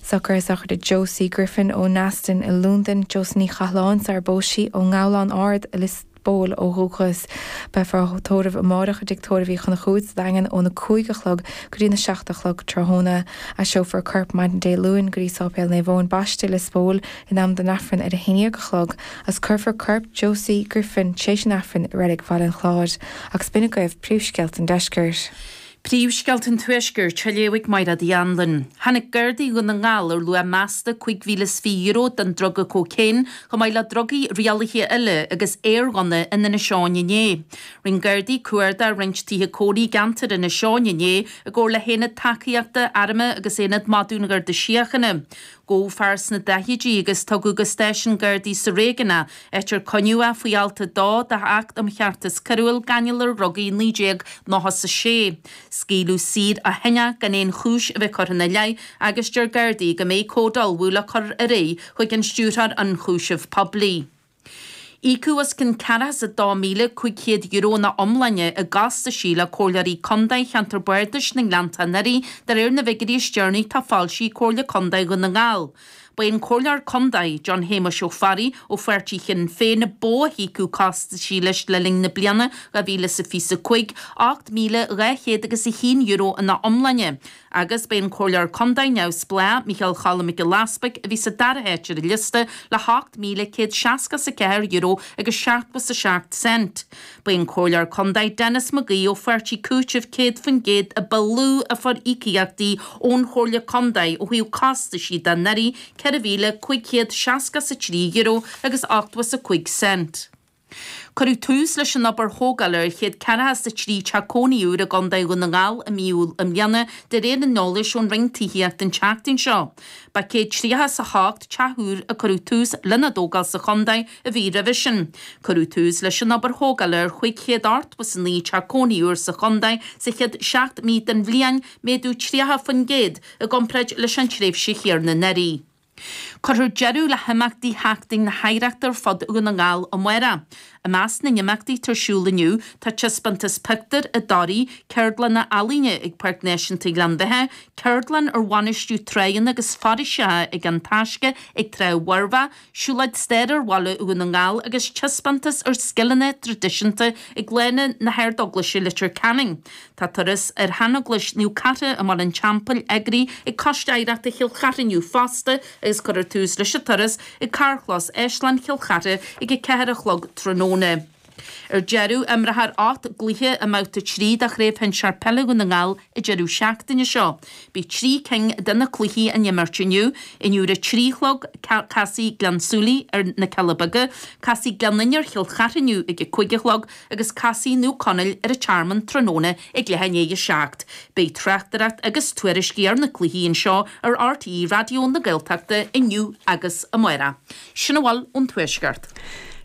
Socruithe sochraide Josie Griffin ó Neasden i Londain, Josie Ní Chathaláin, sarar phós sí, ón nGabhlán Ard i Lios Póil ó dhúchas. Beifear á tórramh amáireach i dTigh Tórraimh Uí Chonchúir sa Daingean ón 5 a chlog go dtí an 7 a chlog tráthnóna. Aistreofar a corp maidin Dé Luain go dtí Sáipéal Naomh Eoin Baiste i Lios Póil in am don Aifreann ar 11 a chlog agus cuirfear corp Josie Griffin tar éis an Aifrinn i Reilig Bhaile an Chláir. Agus b'in agaibh príomhscéalta an deiscirt. Príomhscéalta an Tuaiscirt, á léamh ag Maighréad Uí Anluain. Tháinig Gardaí Dhún na nGall ar luach measta €25,000 den druga cocaine, chomh maith le drugaí rialaithe eile agus aerghunna, in Inis Eoghain inné. Rinne Gardaí cuardach roinnt tithe cónaí i gceantar Inis Eoghain inné, i gcomhar le hAonad Tacaíochta Airm agus Aonad Madadh an Gharda Síochána. Gabhadh fear sna daichidí agus tugadh go stáisiún Gardaí sa réigiún é, áit ar coinníodh é faoi Alt 2 d'Acht um Cheartas Coiriúil, Gáinneáil ar Dhrugaí, 1996. Scaoileadh saor ó shin é gan aon chúis a bheith curtha ina leith agus deir Gardaí go mbeidh comhad á ullmhú le cur ar aghaidh chuig an Stiúrthóir Ionchúiseamh Poiblí. Íocadh os cionn €42,500 ina iomláine i gcostaisí le Comhairleoirí Contae Cheantar Bardais na nGleanntach anuraidh de réir na bhfigiuirí is deireanaí atá foilsithe ag Comhairle Contae Dhún na nGall. Ba é an Comhairleoir Contae, John Shéamuis Ó Fearraigh, ó pháirtí Shinn Féin, a ba mhó a íocadh costaisí leis le linn na bliana 2025, ocht míle, dhá chéad agus a haon euro ina iomláine. Agus b'é an Comhairleoir Contae Neamhspleá, Micheál Choilm Mac Giolla Easbuig, a bhí sa dara háit ar an liosta le €8,164 agus 77 cent. B'é an Comhairleoir Contae Denis McGee ó Pháirtí Cúitimh 100% a ba lú a fuair íocaíochtaí ón Chomhairle Contae ó thaobh costaisí de anuraidh, €4,563 agus 85 cent. Cuireadh tús leis an obair thógála ar 143 teach cónaí úr i gContae Dhún na nGall i mí Iúil i mbliana, de réir an eolais ón Roinn Tithíochta an tseachtain seo. Ba 138 teach úr a cuireadh tús lena dtógáil sa chontae an mhí roimhe sin. Cuireadh tús leis an obair thógála ar 589 teach cónaí úr sa chontae sa chéad seacht mí den bhliain, méadú 30% i gcomparáid leis an tréimhse chéanna anuraidh. Cuirfear deireadh le himeachtaí sheachtain na hoidhreachta ar fud Dhún na nGall amárach. I measc na n-imeachtaí atá ar siúl inniu tá Taispeántas Pictiúr i dToraigh, Ceardlanna Ealaíne ag Páirc Náisiúnta Ghleann Bheatha, ceardlann ar bhainistiú tránna agus foraoiseacha ag An Taisce ag Trá Mhuirbhigh, siúlóid staire ar Bhaile Dhún na nGall agus taispeántas ar scileanna traidisiúnta ag Lána na hArdeaglaise Leitir Ceanainn. Tá turas ar sheaneaglais Naomh Cartha i mBarr an Teampaill eagraithe ag Coiste Oidhreachta Chill Chartha inniu fosta agus cuirfear tús leis an turas ag Carrchlós Áislann Chill Chartha ag a ceathair a chlog tráthnóna. Ar deireadh, imreofar ocht gcluiche i mBabhta 3 de Chraobh Shinsear Peile Dhún na nGall an deireadh seachtaine seo. Beidh trí cinn de na cluichí á n-imirt inniu. Inniu ar a trí a chlog, casfaidh Gleann tSúilí ar Na Cealla Beaga, casfaidh Gleann Fhinne ar Chill Chartha inniu ag a cúig a chlog, Agus casfaidh Naomh Conaill ar An Tearmann tráthnóna ag leath i ndiaidh a seacht, beidh tráchtaireacht agus tuairiscí ar na cluichí anseo ar RTÉ Raidió na Gaeltachta inniu agus amárach. Sin a bhfuil ón Tuaisceart.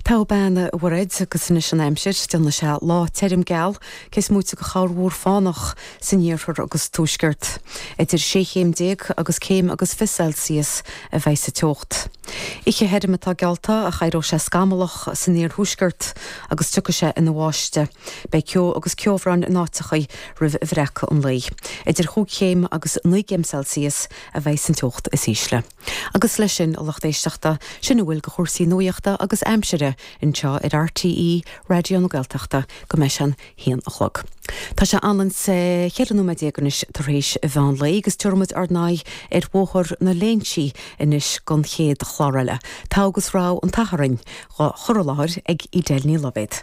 Togha bean a Mhairéad, agus anois an aimsir, déanfaidh sé lá tirm geal, cé is móite de chorrmhúr fánach. san iarthar agus tuaisceart. Idir sé chéim déag agus céim agus fiche Celsius a bheidh sa teocht. Oíche thirim atá geallta ach éireoidh sé scamallach san iarthuaisceart agus tiocfaidh sé ina bháisteadh. Beidh ceo agus ceobhrán in áiteachaí roimh bhreacadh an lae. Idir chúig chéim agus naoi gcéim Celsius a bheidh san teocht is ísle. Agus leis sin a lucht éisteachta, sin a bhfuil de chúrsaí nuaíochta agus aimsire anseo ar RTÉ Raidió na Gaeltachta go mbeidh sé an haon a chlog. Tá sé ionann is cheithre nóiméad déag anois tar éis mheán lae agus tabharfaidh muid ár n-aghaidh ar Bhóthar na Léinsí anois don chéad chlár eile. Togha agus Rogha an tSathairn dhá chur i láthair ag Edel Ní Loibhéad.